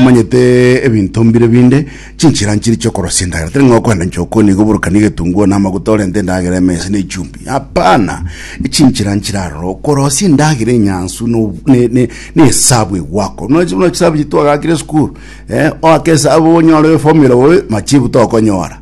Omanyete ebinto mbire binde, chinchera nchiri chi'okorosia endagera. Tari ng'a okoenda inche okoni iga oborokanie egetunguo na amaguta orente endagera ime ase na echumbi. Hapana! Chinchera nchire aroro, okorosia endagera enyansu na ob- ne- ne- na esabu egwakwa. Buna buna chisabu echi twagaakire esukuru, eh, oake esabu onyore eformula bobe, machibu tokonyora.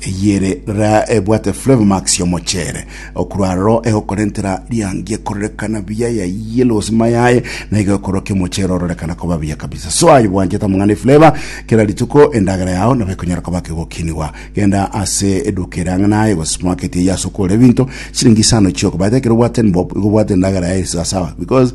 Eyio ere rora ebwate flavomax y'omocheere, okorwa aroro egokora entera riangi ekorerekana buya ya yellow sima yaye na iga ekorwa kia omocheere ororekana koba buya kabisa. So aye bwanchete amang'ana eflavor kera rituko endagera yao nabo ekonyara koba kegokinigwa. Genda ase eduka ere ang'e naye gose supermarket eyio ase okogora ebinto chiringi isano chioko but ekero obwate Nbob igo obwate endagera yaye sawa sawa because